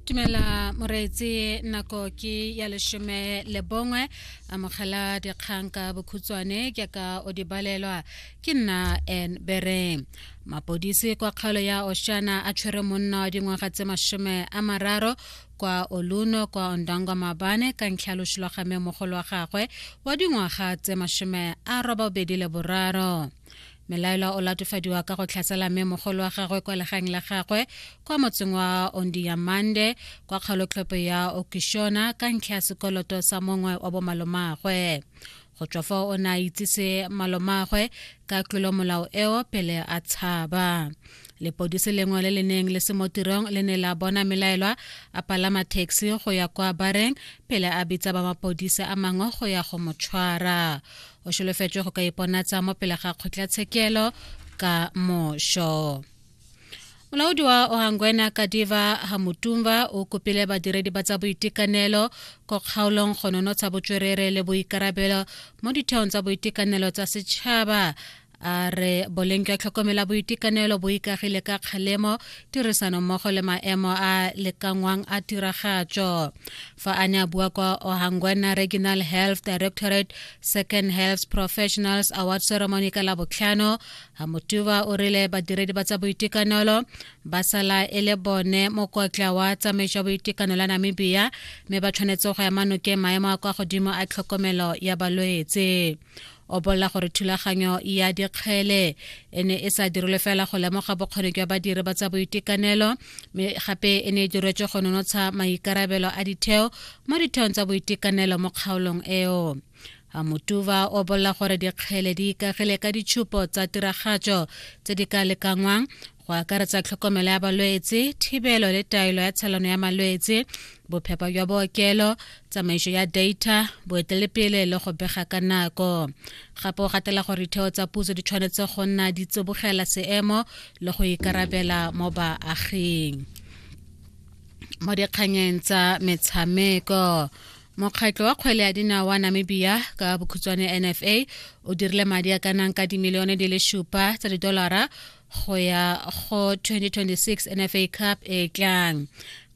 tumela moreetsi nako ke ya leshome le bongwe amogela dikgang ka bokhutshwane ke ka o di balelwa ke nna n bere mapodisi kwa kgaolo ya oshana a tshwere monna wa dingwaga tse masome a mararo kwa oluno kwa ondangwa mabane ka ntlha loso lwa game mogolo wa gagwe wa dingwaga tse masome a robabedi le boraro Melaelwa o latofadiwa ka go tlhasela mme mogolo wa gagwe kwa legang la gagwe kwa motseng wa Ondiyamande kwa kgalotlhopo ya Okishona ka ntlha ya sekoloto sa mongwe wa bomalomaagwe. Go tswa fa o ne a itsise malomaagwe ka tlolomolao eo pele a tshaba. Lepodisi lengwe le le neng le se mo tirong le ne la bona melaelwa a palama taxi go ya kwa bareng pele a bitsa ba mapodisa a mangwe go ya go mo tshwara. o solofetswe go ka iponatsa mo pele ga kgotlatshekelo ka mošo molaodi wa ohangwena kadiva hamutumba o kopile badiredi ba tsa boitekanelo ko kgaolong go nonotsha botswerere le boikarabelo mo ditheong tsa boitekanelo tsa setšhaba a re boleng jwa tlhokomela boitekanelo bo ikagile ka kgalemo tirisano mmogo le maemo a lekangwang a tiragatso fa a ne a bua kwa ohangwana regional health directorate second health professionals award ceremony ka la botlhano hamotuba o rile badiredi ba tsa boitekanelo ba sala e le bone mokotla wa tsamaiso ya boitekanelo ya namibia mme ba tshwanetse go ema nokeng maemo a kwa godimo a tlhokomelo ya balwetse o bolela gore thulaganyo ya dikgele e ne e sa dirilwe fela go lemoga bokgoni jwa badiri ba tsa boitekanelo mme gape e ne e diretswe go nonotsha maikarabelo a ditheo mo ditheong tsa boitekanelo mo kgaolong eo amotuva o bolela gore dikgele di ikagile ka ditshupo tsa tiragatso tse di ka lekangwang go akaretsa tlhokomelo ya balwetse thibelo le taelo ya tshelano ya malwetse bophepa jwa bookelo tsamaiso ya data boetelepele le go bega ka nako gape o gatela gore ditheo tsa puso di tshwanetse go nna di tsibogela seemo le go ikarabela mo baaging mo dikganyeng tsa metshameko mokgatlho wa kgwele ya dinao wa namibia ka bokhutshwane nfa o dirile madi a ka nang ka dimilione di le supa tsa didolara go ya go 2026 NFA Cup e tlang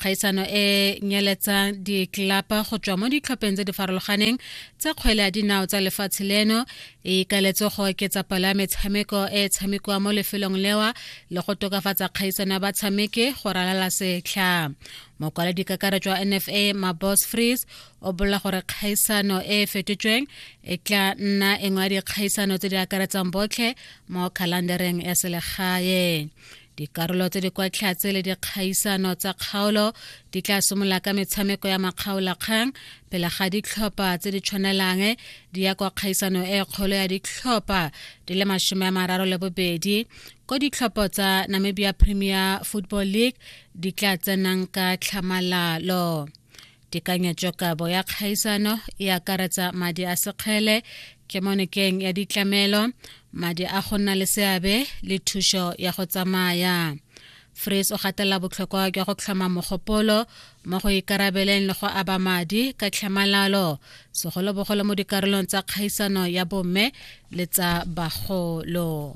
kgaisano e nyeletsang ditlelapa go tswa mo ditlhopheng tse di farologaneng tsa kgwele ya dinao tsa lefatshe leno e ikaletswe go oketsa palo ya metshameko e e tshamekiwa mo lefelong lewa le go tokafatsa kgaisano ya batshameki go ralala setlha mokwaledi kakaretso wa nfa mabos frees o bolela gore kgaisano e e fetotsweng e tla nna e ngwa dikgaisano tse di akaretsang botlhe mo khalandereng ya selegae dikarolo tse di kwa tlhatse le dikgaisano tsa kgaolo di tla simolola ka metshameko ya makgaolakgang pele ga ditlhopha tse di tshwanelang di ya kwa kgaisano e kgolo ya ditlhopha di le masome a mararo le bobedi ko ditlhopho tsa namibia premier football league di tla tsenang ka tlhamalalo tekanyetsokabo ya kgaisano e akaretsa madi a sekgele kemonekeng ya ditlamelo madi a go nna le seabe le thušo ya go tsamaya fris o gatela botlhokwa jwa go tlhoma mogopolo mo go ikarabeleng le go aba madi ka tlhamalalo segolobogolo mo dikarolong tsa kgaisano ya bomme le tsa bagolo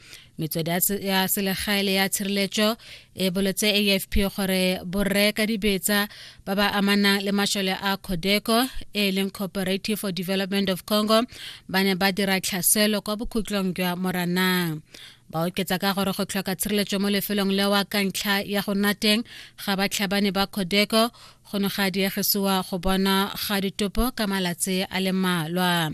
metswedi ya selegae le ya tshireletso e boletse afp gore borre ka dibetsa ba ba amanang le mashole a codeco e leng cooperative for development of congo ba ne ba dira tlhaselo kwa bokhutlong jwa moranang ba oketsa ka gore go tlhoka tshireletso mo lefelong lewa ka ntlha ya go nna teng ga batlhabane ba codeco go ne ga diegisiwa go bona ga ditopo ka malatsi a le malwa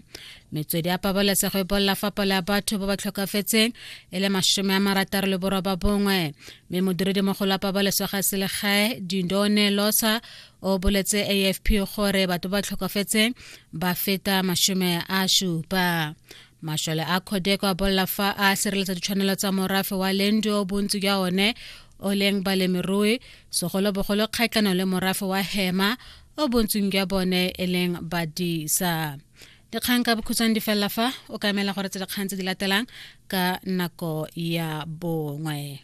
metswedi ya pabalesego e bolela fa palo ya batho ba ba tlhokafetseng e le masome a marataro le boroba bongwe mme modiredimogolo wa pabalesego ya selegae dindone losa o boletse afp gore batho ba ba tlhokafetseng ba feta masome a supa mašole a khodeko a bolela fa a sireletsa ditshwanelo tsa morafe wa lendi o bontsi jwa one o leng balemirui segolobogolo kgatlhano le morafe wa hema o bontsing jwa bone e leng badisa dikgang ka bokhutshwane di felela fa o ka emela gore tse dikgang tse di latelang ka nako ya bongwe